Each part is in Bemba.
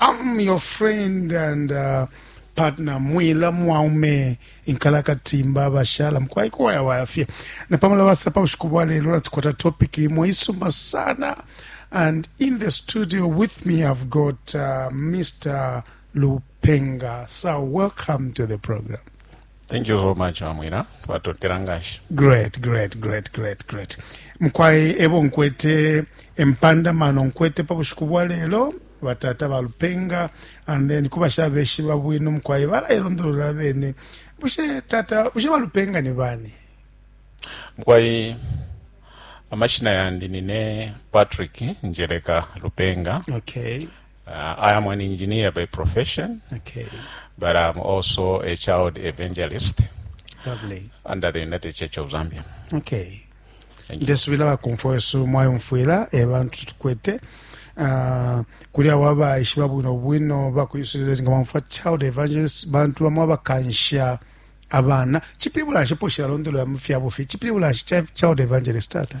I'm your friend and uh, partner mwila mwaume inkalakatimba abashala mukwai kuwayawaya fye napamala basapa bushiku bwa lelo natukwata topic imwe isuma sana and in the studio with me i've got uh, mr lupenga so welcome to the program thank you so much mamwina twatotela nganshi great great great great great mukwayi ebo nkwete empanda mano nkwete pa bushiku bwa lelo batata balupenga and then kuba shabeshiba bwino mukwayi balayilondolola bene bushe tata bushe balupenga ni bani mukwayi amashina yandi nine patrick njereka lupenga okay. Uh, I am an engineer by profession. Okay. But I'm also a child evangelist. Lovely. Under the United Church of Zambia. Okay. ndesubila bakumfwa wesu mwayumfwila ebantu eh, tukwete uh, kuli abo abaishiba bwino bwino bakuisulile nga mwamfwa child evangelist bantu bamwe abakansha abana chipibula nshi poshila londolola mu fyabufi chipibula nshi child evangelist tata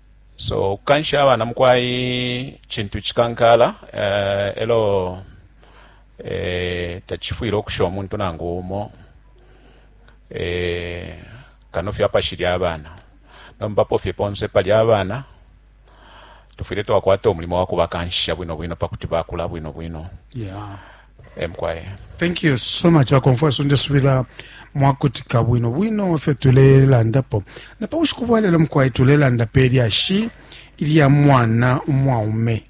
So ukukansha abana mukwai cintu cikankala uh, elo eh, tacifwile ukusha umuntu nangu umo eh, kano fye apashili abana nombapo fye ponse pali abana tufwile twakwata umulimo wa kubakanshisha bwino bwino pakuti bakula bwino bwino yeah. emkwaya thank you so much bakomfweso ndesubila mwakutika bwino bwino fyo tulelandapo na pa bushiku bwa lelo mukwai tulelanda pe lyashi ilya mwana umwaume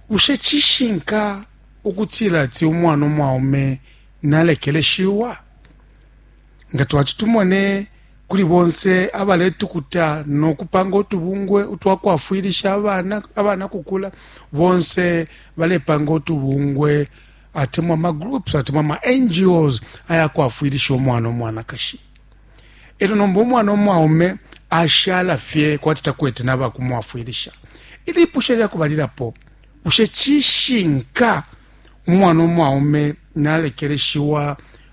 bushe cishinka ukutila ati umwana umwaume nalekeleshiwa nga twati tumone kuli bonse abaletukuta no kupanga utubungwe utwa kwafwilisha abana abana kukula bonse balepanga utubungwe atemwa ma groups atemwa ma ngos ayakwafwilisha omwana omwanakashi elo nomba omwana omwaume ashala fye kwati takwete nabakumwafwilisha ilipusha lyakubalilapo bushe cishinka umwana omwaume nalekeleshiwa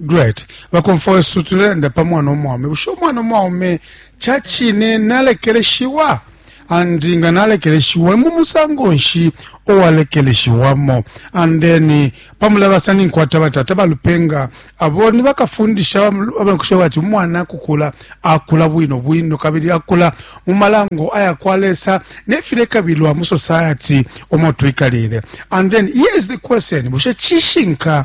great bakomfo wesu tulelanda pa mwana omwaume bushe omwana omwaume ca cine nalekeleshiwa andi nga nalekeleshiwa mu musango nshi owalekeleshiwamo and then pamulabasa ninkwata batata balupenga abo ni bakafundisha abankusha bati umwana kukula akula bwino bwino kabili akula mu malango aya kwa lesa nefilekabilwa mu society omo twikalile and then here is the question bushe cishinka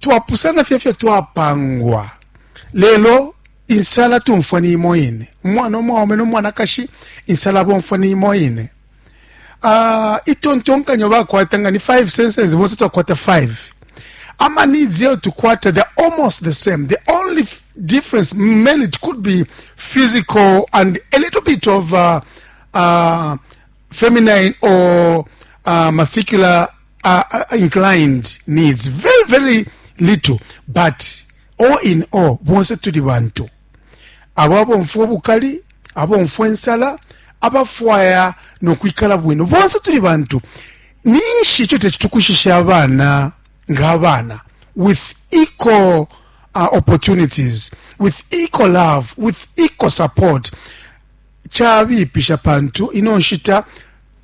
twapusana fye fyo twapangwa lelo insala tumfwa ni imo ine umwana omwaume nomwanakashi insala bomfwa ni imo ine uh, itontonkanyo bakwata nga ni 5 senses bonse twakwata 5 ama needs yeyo tukwata they're almost the same the only difference mainly it could be physical and a little bit of uh, uh, feminine or uh, muscular uh, uh, inclined needs very very little but all in all bonse tuli bantu abo abomfwa obukali abomfwa ensala abafwaya nokwikala bwino bonse tuli bantu ninshi ekyo tekitukushisha abaana ng'abaana with equal uh, opportunities with equal love with equal support kyabiipisha pantu ino nshita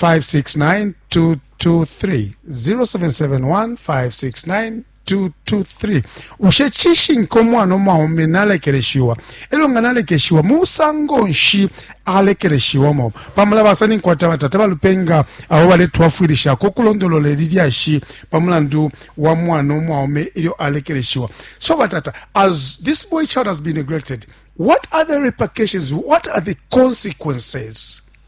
569-223 0771-569-223 ushe cishinka umwana umwaume nalekeleshiwa elyo nga nalekeshiwa musango nshi alekeleshiwamo pamula basani nkwata batata balupenga abo baletwafwilishako ukulondolola ili lyashi pa mulandu wa mwana umwaume ilyo alekeleshiwa so batata as this boy child has been neglected what are the repercussions what are the consequences